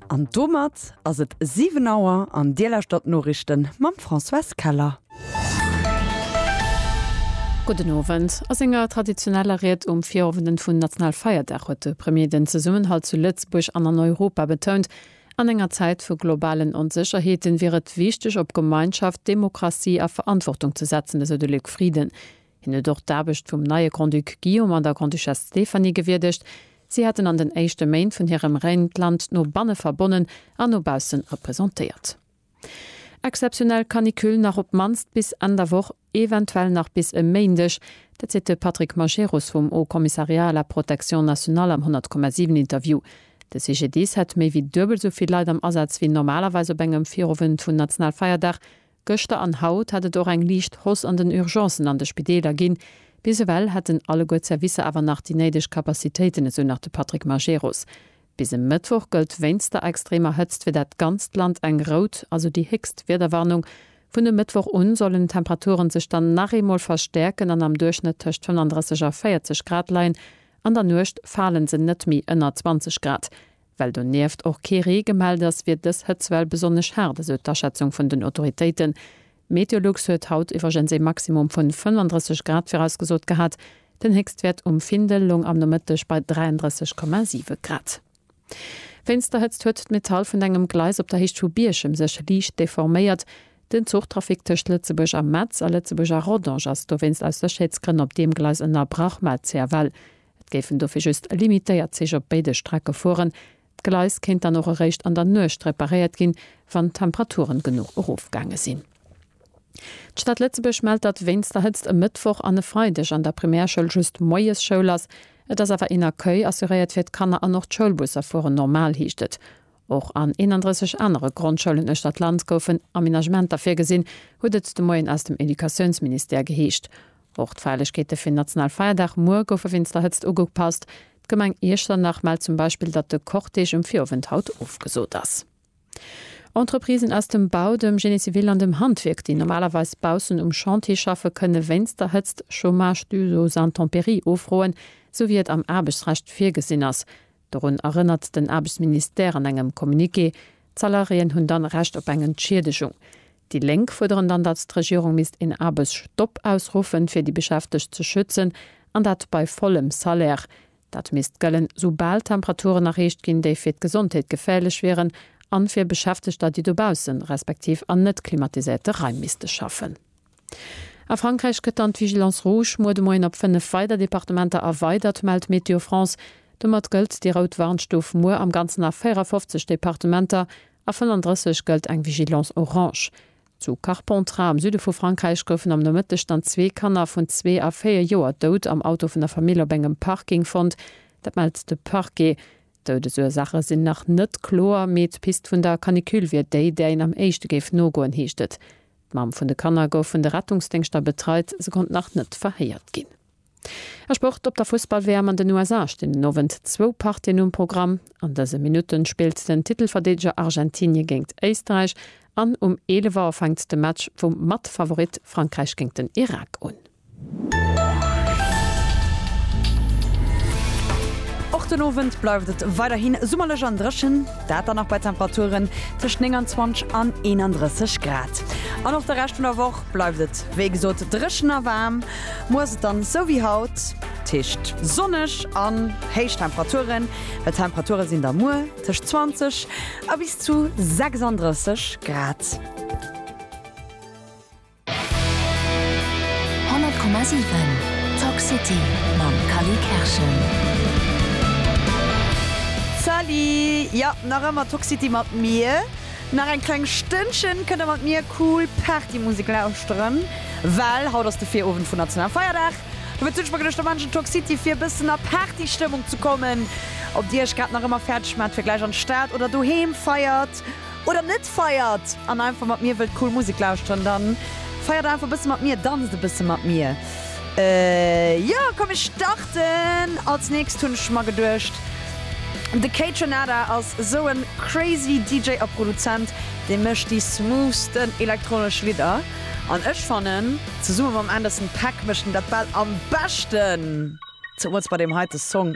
An domat ass et 7 Auer an Dir lauschtert d'Noriichten mam Françoise Keller. Gudden Owend. A senger traditioneller Ried um Virowenden vun Nationalfeierdag huet de Premier den Zesummenhalt zu Lëtzebuerg an an Europa betount. An enger Zäit vu globalen Onsécherheeten wier et wichteg op Gemeinschaft, Demokratie a Verantwortung ze setzen, esou de Luc Frieden. Hien huet och d'Aarbecht vum neie Grand-Duc Guillaume an der Grande-Duchesse Stéphanie gewierdegt. Si haten an den éischte Méint vun hirem Règne d'Land no banne verbonnen an no bausse representéiert. Exzeptionell Canicule nach op d'mannst bis Enn der Woch, eventuell nach bis e Méindeg, dat seet de Patrick Majerus vum Haut Commissariat à la Protection nationale am 100,7 Interview. De CGDIS hätt méi wéi duebel esou vill Leit am Asaz wéi normalerweis op engem Virowend vun Nationalfeierdag, Gëschter an haut hat et och eng liicht Hoss an den Urgencen an de Spideeler ginn. Bis ewell hätten alleguer d'Servicer awer nach déi néideg Capacitéiten, esou nach de Patrick Majerus. Bis e Mëttwoch gëllt wéinst der extremer Hëtzt fir dat ganzt Land eng rout, also déi héchst Wiederwarnung. Vun e Mëttwoch u sollen d'Temperature sech dann nach eemol verstäerken an am Duerchschnëtt tëscht 35 a 40 Grad leien. An der Nuecht fale se net méi ënner 20 Grad. Well donieft och kee Ree gemellt ass, wier dës Hëtzwell besonnesch haart, esou d'Aschätzung vun den Autoritéiten. Meteolux huet haut iwwergens ee Maximum vun 35 Grad virausgesot gehat, den Héchstwäert um Findel loung am Nomëtteg bei 33,7 Grad. Wéinst der Hëtzt huet d'Metall vun engem Gleis op der Héicht vu Bierchem sech liicht deforméiert. Den Zuchtrafic tëscht Lëtzebuerg a Metz a Lëtzebuerg a Rodange ass dowéinst aus Sécherheetsgrënn op deem Gleis ënnerbrach, mellt CFL. Et géifen dofir just limitéiert Zich op béide Strecke fueren. D'Gleis kéint dann och eréischt an der Nuecht reparéiert ginn, wann d'Temperaturen genuch erofgaange sinn. D'Stad Lëtzebuerg mellt, datt wéinst der Hëtzt e Mëttwoch an e Freideg an der Primärschoul just moies Schoul ass. Et ass awer een Accueil assuréiert fir d'Kanner an och d'Schoulbusser fueren normal, heescht et. Och an 31 anere Grondschoulen uechter d'Land goufen Amenagementer virgesinn, huet et de Moien aus dem Educatiounsministère geheescht. Och d'Feierlechkeete fir den national Feierdag muer goufe wéinst der Hëtzt ugepasst. D'Gemeng Iechternach mellt zum Beispill, datt de Cortège um Virowend haut ofgesot ass. Entreprisen aus dem Bau, dem Génie civil an dem Handwierk, déi normalerweis baussen um Chantier schaffen, kënne wéinst der Hëtzt Chômage dû aux intempéries ofroen, esou wéi et am Aarbechtsrecht virgesinn ass. Dorun erënnert den Aarbechtsministère an engem Communiqué. D'Salariéen hunn dann Recht op eng Entschieddegung. Déi Lénk fuerderen dann, datt d'Regierung misst een Aarbechtsstopp ausruffen, fir déi Beschäftegt ze schützen, an dat bei vollem Salaire. Dat misst gëllen, sou bal Temperaturen erreecht ginn, déi fir d'Gesondheet geféierlech wieren, an fir Beschäftegter, déi dobaussen, respektiv an net klimatiséierte Raim misste schaffen. A Frankräich gëtt dann d'Vigilance rouge muer de Moien op 5 weider Departementer erweidert, mellt Météo France. Domat gëllt déi rout Warnstuf muer am Ganzen a 54 Departementer, a 35 gëllt eng Vigilance orange. Zu Carpentras am Süde vu Frankräich goufen am Nomëtteg dann zwee Kanner vun zwee a véier Joer dout am Auto vun der Famill op engem Parking fonnt. Dat mellt de Parquet. D'Doudesursaache sinn nach net kloer, mee d'Pist vun der Canicule wier déi, där een am éischte géif nogoen, heescht et. D'Mamm vun de Kanner gouf vun de Rettungsdéngschter betreit, se konnt nach net verhéiert ginn. A Sport, Op der Fussball-WM an den USA stinn den Owend zwou Partien um Programm. An dëse Minutten spillt den Titelverdeedeger Argentinie géingt Éisterräich an um 11 Auer fänkt de Match vum Mat-Favorit Frankräich géingt den Irak un. Och den Owend bleift et weiderhi summerlech an dréchen, dat dann nach bei Temperaturen tëscht 29 an 31 Grad. An och de Rescht vun der Woch bleift et wéi gesot dréchen a waarm. Muer ass et dann esou wéi haut, dat heescht sonneg an héich Temperaturen. D'Temperature sinn da muer tëscht 20 a bis zu 36 Grad. 100,7 Talk City mam Cally Kerschen. Salut! Jo, nach ëmmer Talk City mat mir. Nach eng kleng Stënnchen kënnt der mat mir cool Partymusek lauschteren, well haut ass de Virowend vun nationalem Feierdag. Dofir zünn ech mer geduecht, da maachen ech en Talk City fir e bëssen a Partystëmmung ze kommen. Ob dir iech grad nach ëmmer fäerdeg maacht fir gläich an d'Stad oder doheem feiert, Oder net feiert an einfach mat mir wëllt cool Musek lauschteren, dann feiert einfach e bësse mat mir, danzt e bësse mat mir. Jo, komm mir starten! Als nächst hunn ech mer geduecht, de Kaytranada ass esou e crazy DJ a Produzent, dee mécht déi smoothsten elektronesch Lidder an ech fannen, zesumme mam Anderson .Paak mécht en dat bal am beschten. Zemools bei deem heite Song.